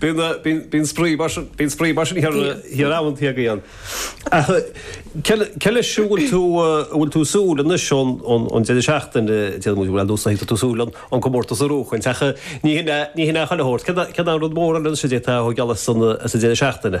Bíonn spraoi mar sin bíonn spraoi mar sin thiar amhan taobh againn. Ach cé leis a bhfuil tú a bhfuil tú ag súil anois ón ón deireadh seachtaine déarfaidh muid well ar ndóigh tá tú ag súil an an comórtas a bhuachaint ach ní hin ní hin é chuile shórt céard céard é an rud mór eile anois a d'fhéadfá a ghabh geall as an as an deireadh seachtaine?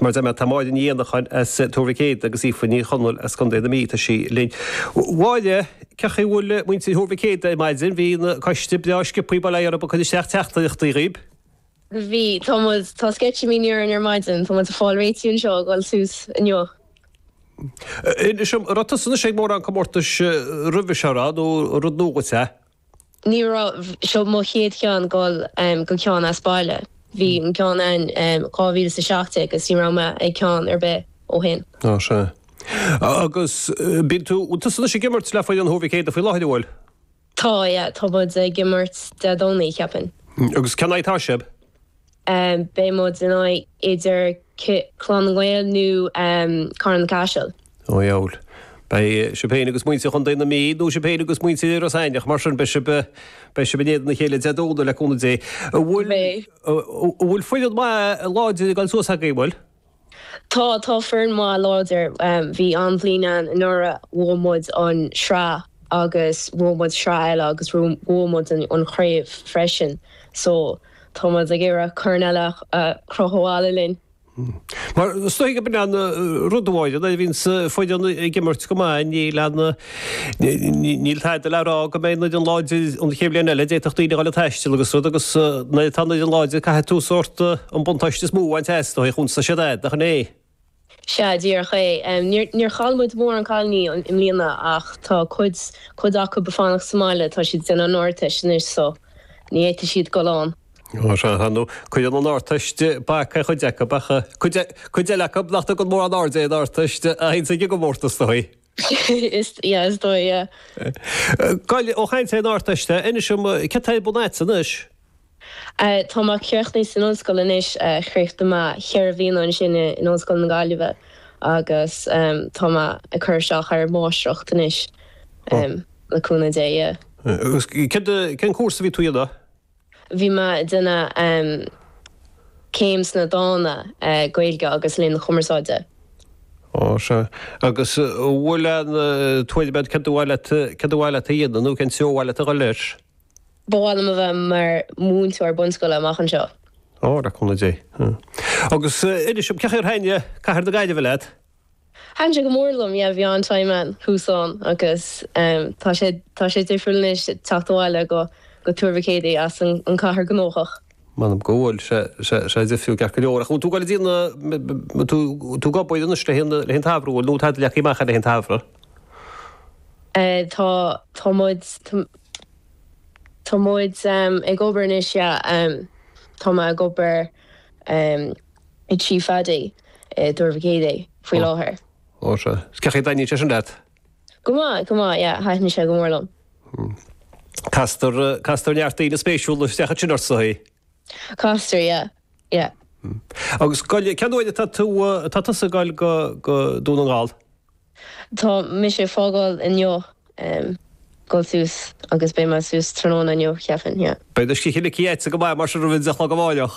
Mar a deir mé tá Máire Ní Éanacháin as Tuar Mhic Éadaigh agus Aoife Ní Chonaill as Contae na Mí, tá sí linn. Mháire, cé chaoi bhfuil muintir Thuar Mhic Éadaigh ar maidin? Bhí an coiste breá sciobtha ba léir ag cur isteach teachtaireachtaí dhaoibh. Bhí, tá muid, tá sceitimíní orainn ar maidin, tá muid ag fáil réitithe anseo ag dhul suas inniu. Inis dom, raibh tusa anois ag mórán comórtais roimhe seo a rá nó rud nua dhuit é? Ní raibh, seo mo chéad cheann ag goil go ceann as baile. Bhí an ceann eile in 2017 agus ní raibh mé ag ceann ar bith ó shin. Ó sea. Agus bíonn tú, bhfuil tusa anois ag imirt le foireann Thuar Mhic Éadaigh faoi láthair an bhfuil? Tá, yeah. Tá muid ag imirt Dé Domhnaigh, cheapfainn. Agus cé in aghaidh atá sibh? beidh muid in aghaidh idir Clann na nGael nó Carna Caiseal. Ó dheabhail. Beidh sibh féin agus muintir Chontae na Mí nó sibh féin agus muintir Iorras Aithneach, mar sin, beidh sibh, beidh sibh in éadan a chéile Dé Domhnaigh le cúnamh Dé. An bhfuil, an bhfuil foireann maith láidir ag dul suas agaibh, an bhfuil? Tá, tá foireann maith láidir. Bhí an-bhliain againn anuraidh, bhuaigh muid an sraith agus bhuaigh muid sraith eile agus bhuaigh muid an chraobh freisin so tá muid ag iarraidh corn eile a chrochadh abhaile linn. Mar, is dóigh go bhfuil aon rud amháin, nuair a bhíonns foireann ag imirt go maith níl aon, Níl tada le rá go mbeidh an fhoireann láidir an chéad bhliain eile, d'fhéadfadh daoine a ghabháil ag taisteal agus rud agus nuair atá an fhoireann láidir caithfidh tú sórt an buntáiste is mó a bhaint as, ndóigh, chúns tá siad agat, nach in é? Sea, díreach é. Níor chaill muid mórán cailiní i mbliana ach tá cuid, cuid acu ag fanacht sa mbaile, tá siad ag déanamh an Ardteist anois so ní fhéadfaidh siad dul ann. Ó, sea, sea, ndóigh cuireann an Ardteist bac ar chuid acu ach cuid, cuid eile acu nach dtugann mórán airde ar an Ardteist a théann chuig an gcomórtas, ndóigh. Is yeah is dóigh yeah. Go deimhin ó chaint faoin Ardteist, Inis dom, céard atá ar bun agat anois? Eh, tá mé críochnaithe san ollscoil anois, eh, chríochnaigh mé cheithre bhliana ansin i, in Ollscoil na Gaillimhe agus, ehm, tá mé ag cur isteach ar máistreacht anois, ehm, le cúnamh Dé, yeah. Agus cén, cén cúrsa a bhí tú a dhéanamh? Bhí mé ag déanamh céim sna dána, Gaeilge agus Léann na Cumarsáide. Ó, sea. Agus an bhfuil aon tuairim agat céard ba mhaith leat, céard ba mhaith leat a dhéanamh nó cén treo ba mhaith leat a dhul leis? Ba mhaith liom a bheith mar mhúinteoir bunscoile amach anseo. Ó, le cúnamh Dé. Agus inis dom, cé chaoi ar thaitin cathair na Gaillimhe leat? Thaitn sé go mór liom, yeah, bhí an-time ann, thuas ann agus tá sé, tá sé difriúil anois teacht abhaile go, go Tuar Mhic Éadaigh as an cathair gnóthach. M'anam go bhfuil sé, sé, sé difriúil ceart go leor ach an bhfuil tú ag goil dtí na, an bhfuil tú ag obair anois le haghaidh an, le haghaidh an tsamhraidh, an bhfuil tada leagtha amach agat le haghaidh an tsamhraidh? Eh tá, tá muid, tá, tá muid ag obair anois, yeah, tá mé ag obair. ag Tigh Phaidí i dTuar Mhic Éadaigh faoi láthair. Ó sea. 'S cén chaoi a dtaitníonn sé sin leat? Go maith, go maith, yeah, thaitníonn sé go mór liom. Castar, castar neart daoine spéisiúla isteach ansin ort, sa chaoi? Castar, yeah, yeah. Agus scoil, cén uair atá tú, atá tusa ag goil go, go Dún na nGall? Tá mise ag fágáil inniu, em, goil suas agus beidh mé suas tráthnóna inniu, cheapfainn, yeah. Beidh do scíth ligthe agat go maith mar sin roimh a deich a chlog amáireach.